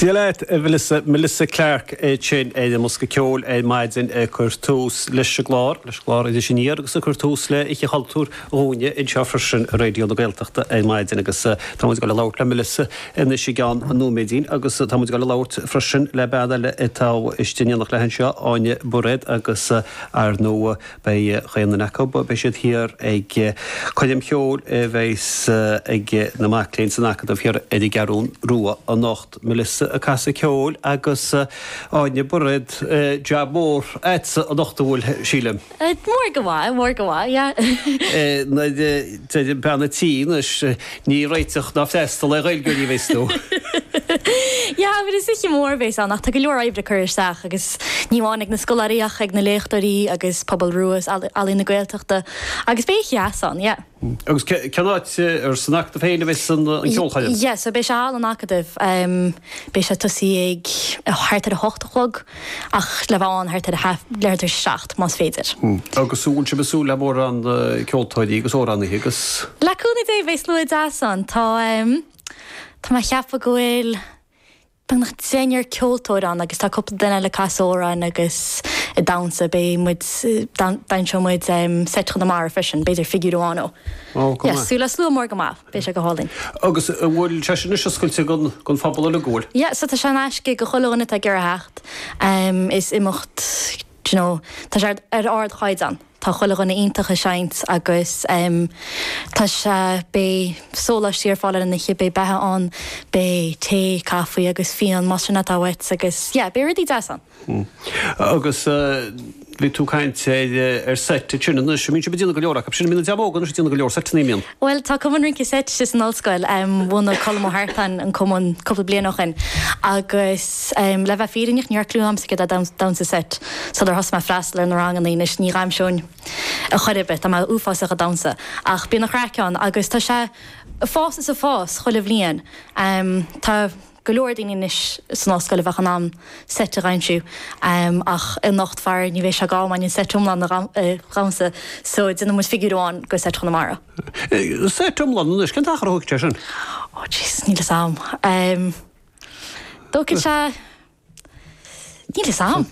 Dia leat, a Mhelissa. Melissa Clarke é sin ar an mbosca ceoil ar maidin ag cur tús leis an gclár, leis an gclár Iris Aniar agus ag cur tús le hOíche Chultúir dhúinne anseo freisin ar Raidió na Gaeltachta ar maidin agus tá muid ag dul a labhairt le Melissa anois i gceann nóiméidín agus tá muid ag dul a labhairt freisin le bean eile atá istigh in éineacht léi anseo, Áine Bairéad agus ar ndóigh. Beidh chaon duine acu, beidh siad thiar ag coirm cheoil a bheas ag na mic léinn san Acadamh thiar ar an gCeathrún Rua anocht, Melissa ag casadh ceoil agus Áine Bairéad, jab mór a'tsa anocht an bhfuil, sílim? Mór go maith, mór go maith, yeah. Mar a deir an bean an tí, anois. Ní réiteach ná freastal é Ghaeilge ariamh, is tú. Jah, but is oíche mór a bhéas ann ach tá go leor oibre curtha isteach agus ní amháin ag na scoláirí ach ag na léachtóirí agus Pobal Rua is Ealaín na Gaeltachta agus beidh oíche dheas ann, yeah. Agus cén áit, an san Acadamh féin a bheas an cheolchoirm? Yeah, so beidh sé i halla an Acadaimh. Beidh sé ag tosaí ag thart ar a hocht a chlog ach le bheith ann thart ar leath tar éis a seacht, más féidir. Agus an bhfuil sibh ag súil le mórán ceoltóirí agus amhránaithe agus.? Le cúnamh Dé beidh slua deas ann. Tá Tá mé ag ceapadh go bhfuil beagnach deichniúr ceoltóir ann agus tá cúpla duine eile ag casadh amhráin agus ag damhsa. Beidh muid Dainseoidh muid Seit Chonamara freisin, b'fhéidir figiúr amháin ó. Ó, go maith. Yes, súil le slua mór go maith. Beidh sé go hálainn. Agus an bhfuil sé sin anois oscailte don phobal uilig, an bhfuil? Yeah, so tá sé in aisce go chuile dhuine atá ag iarraidh theacht. Is imeacht, do you know, tá sé ar ardchaighdeán, tá chuile dhuine iontach ag seinnt agus tá sé, beidh sóláistí ar fáil ar an oíche, beidh beatha ann, beidh tae, caife agus fíon, más é sin atá uait agus yeah, beidh rudaí deasa ann. Hm. Agus bhí tú ag caint ar seit ansin anois. An mbíonn sibh ag déanamh go leor acu? Sin, an mbíonn na dreamanna óga anois ag déanamh go leor seiteanna, an mbíonn? Bhuel, tá cumann rince seite san ollscoil. Bhunaigh Colm Ó hEartáin an cumann cúpla bliain ó shin agus le bheith fírinneach ní raibh cliú agamsa céard é damhsa seit sular thosaigh mé ag freastal ar na ranganna. Anois ní dhaimseoinn ar chor ar bith, tá mé uafásach ag damhsa, ach bíonn an chraic ann agus tá sé ag fás is ag fás chuile bhliain. Tá. go leor daoine anois san ollscoil a bheadh in ann seit a dhaimsiú ach anocht faraor ní bheidh sách am againn an seit iomlán a dhamsa so déanann muid figiúr amháin de Sheit Chonamara. Seit iomlán anois, cén t-achar a thógfadh sé sin? Oh jeez níl 'fhios a'am. Thógfadh sé, níl 'fhios a'am.